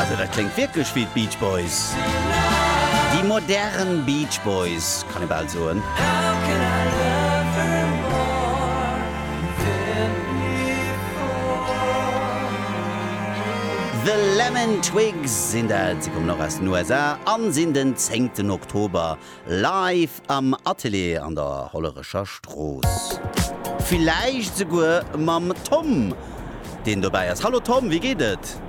Also dat kléngt wierklech wéi d'Beach Boys, déi modern Beach Boys, kann ee bal soen. The Lemon Twigs sinn dat, si kommen och aus den USA an sinn den zéngten Oktober Live am Atelier an der Hollerecher Strooss. Villäicht souguer mam Tom, deen dobäi ass. Hallo Tom, wéi geet et?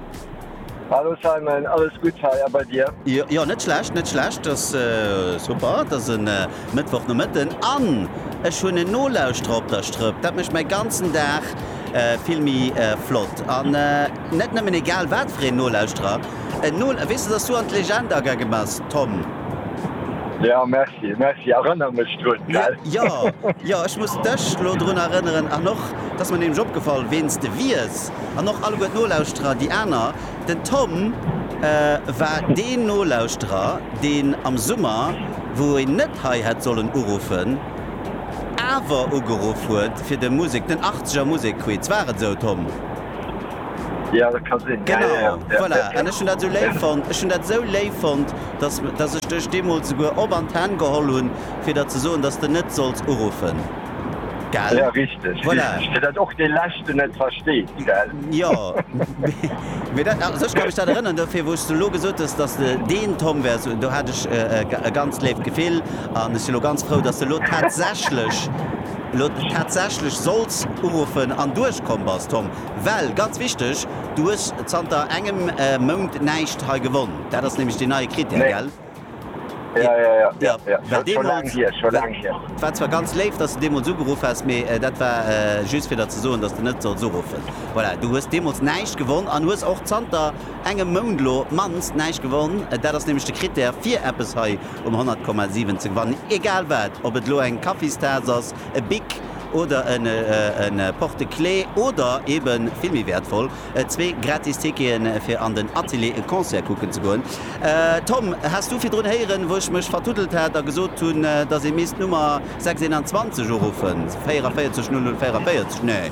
Hallo Simon, alles gutt hei, a bei dir? Jo, net schlecht, net schlecht. Et ass super, et ass e Mëttwochnomëtten an ech hunn en Nolauschterer op der Strëpp. Dat mécht mäi ganzen Dag vill méi flott. Net nëmmen egal wat fir een Nolauschterer, en Nol, weess de, dass du an d'Legend agaange bass, Tom? Jo, merci, merci, erënner mech drun, gell? Jo, jo, ech muss dech elo drun erënneren, an och, dass mer nämlech opgefall, ween s de wiers, an och alleguer d'Nolauschterer, déi aner, den Tom war deen Nolauschterer, deen am Summer, wou een net hei hätt sollen uruffen, awer ugeruff huet fir de Musek, den 80er Musekquiz, war et esou, Tom? Ja, dat ka sinn. Genau, ja, ja, ja. Voilà. Ja, ja. Ech hun dat sou léif fonnt. Ech hun dat sou léif fonnt, dass, dass ech dech deemols souguer op an d'Hänn geholl hun, fir der ze soen, dass de net solls uruffen. Gell? Ja, richteg. Voilà. Richteg. Fir dat och dee Leschten net versteet, gell? Jo. Mee dat, also ech ka mech dat erënnern. Dofir, wou s de elo gesot hues, dass de deen Tom wäers, do hat ech e ganz léift Gefill. An ech si lo ganz frou, dass de lo tatsächlech. Elo huet mech tatsächlech Solz uruffen an duerchkomm bass, Tom, well, ganz wichteg, du hues zanter engem Mount näischt hei gewonn. Dat ass nämlech deen neie Critère, gell? Nee. Jo, jo, jo, jo, jo. Well deemools, et war zwar ganz léif, dass de deemools ugeruff häss, mee dat war just fir der ze soen, dass de net solls uruffen. Voilà, du hues deemools näischt gewonn an hues och zanter engem Mount lo op d'mannst näischt gewonn. Dat ass nämlech de Krittär fir eppes hei um 100,7 ze gewannen, egal wat, ob et lo eng Kaffistaass ass, e Bic oder en Porte-clé oder ebe vill méi wäertvoll, zwee gratis Ticketen fir an den Atelier, e Concert kucken ze goen. Tom, has du virdrun héieren, wou ech mech vertuddelt hat a gesot hunn, dass ee misst d'Nummer 621 uruffen, 44 00 44? Nee.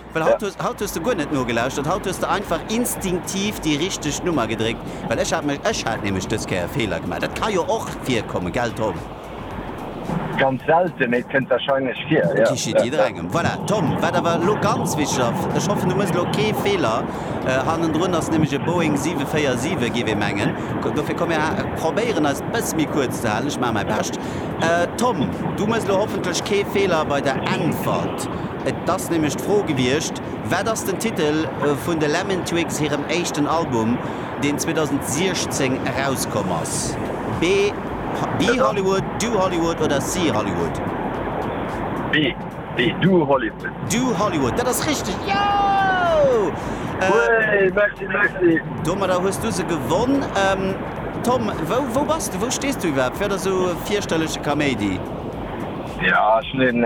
Well haut hues, haut hues de guer net nogelauschtert, haut hues de einfach instinktiv déi richteg Nummer gedréckt. Well ech hat mech, ech hat nämlech dës Kéier e Feeler gemaach. Dat ka jo och virkommen, gell Tom? Ganz selte, mee et kënnt warscheinlech vir, jo. Geschit jidderengem. Voilà, Tom, wat awer elo ganz wichteg ass, ech hoffen du mëss elo kee Feeler, hannendrun ass nämlech e Boeing 747, géif ee mengen, dofir komm mir probéieren eis e bësse méi kuerz ze halen, ech maache mäi Bescht. Tom, du mëss elo hoffentlech kee Feeler bei der Äntwert. Et ass nämlech d'Fro gewiescht, Wat ass den Titel vun de Lemon Twigs hirem éischten Album, deen 2016 erauskomm ass? Be Be Hollywood, Do Hollywood oder See Hollywood? Be Be Do Hollywood. Do Hollywood, dat ass richteg! Joo! Wéi, merci, merci! Domadder hues du se gewonn. Tom, wou wou bass de? Wou stees du iwwerhaapt? Fir der esou fierchterleche Kaméidi? Jo, ech hunn een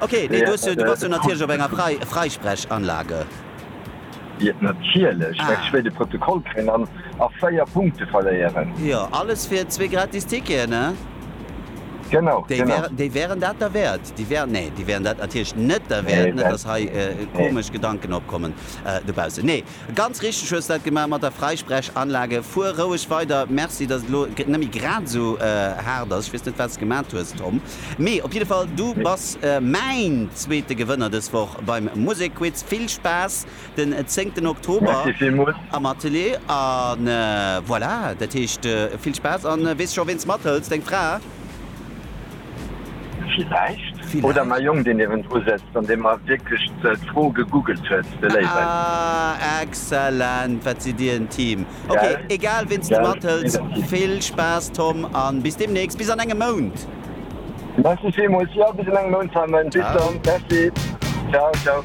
Ok, nee, du hues jo, du bass jo natierlech op enger Frei, Freisprechanlage. Jep, natierlech. Mä ech wéilt e Protokoll kréien an a véier Punkte verléieren. Jo, alles fir zwee gratis Ticketen, he? Genau, Déi genau. wären, déi wären dat derwäert? Déi wären, nee, déi wären dat natierlech net derwäert. Nee, Net, wären, dass hei nee, nee. komesch Gedanken opkommen dobaussen. Nee. Ganz richteg hues dat gemaach mat der Freisprechanlage. Fuer roueg weider. Merci dass et elo nemmi grad esou haart ass. Ech wees net wats gemat hues Tom, mee op jidde Fall du bass mäin zweete Gewënner des Woch beim Musekquiz. Vill Spaass den zéngten Oktober am Atelier an voilà dat heescht vill Spaass an wees scho weens mathëls, deng Fra? Villäicht. Oder ma Jong, dee niewendru sëtzt an dee mer wierklech d'Fro gegoogelt huet, de Léiwen. Ah, excellent! Wat sidd Dir en Team. Ok, egal ween s du mathëls, vill Spaass Tom an bis deemnächst, bis an engem Mount! Merci villmools, jo, bis an engem Mount Simon, bis dann, merci, ciao, ciao.